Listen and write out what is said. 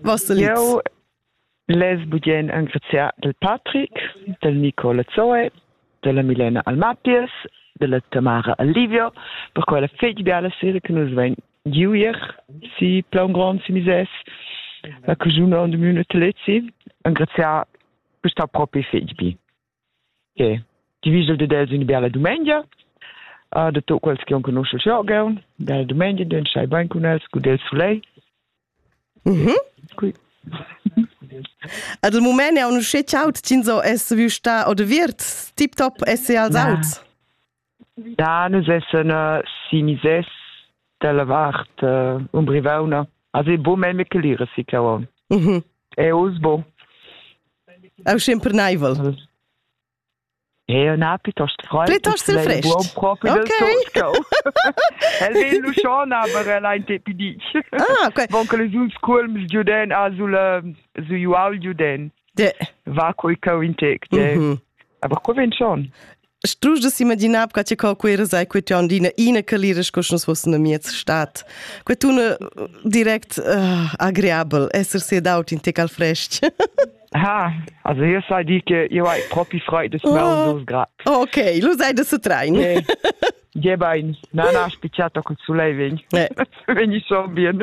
Vossa liz? Jau less bugien engraziar del Patrick, del Nicola Zoe, della Milena Almapies, della Tamara Alivio, per quella fegli biala sera che nus vein giu ier, si plaun grond si mises, la cajuna und de mune Telezi, engraziar questa propi fegli bi. Okay. Ti vist dad els ün bella dumengia. Uh, da tot quels che on conoschel scha gaun. Bella dumengia, den schai bain cun els, gut el sulei. Mhm. Quick. Ad il moment è un usce ciaut, Cinzo es viu sta o de viert, tip top es als aut. Da nus essan sinisès dalla vart umbrivauna. Also è buc memia clera si cavon. È uss buc. È schimperneivel. Ja, na, piuttosto frei. Piuttosto frescht. Proprio okay. El vegl lu schon, aber el ein te pidi. Ah, okay. Von che les uns culms giuden a sul su jual giuden. De. Va coi cau in tec. De. Aber co ven schon? Strusch da s'imaginar che ti co queira sai quei tu andina ina calira sco sch'us fossen a miez stat. Quei tu ne direct uh, agreabel, esser sedaut in te al frest. Ha, also hier sei die che io hai propi freud des oh. dos grad. Ok, lo sai da se train. Nee. Jebein, nana ha spicciato col sulei vegn. Eh. Vegni so bien.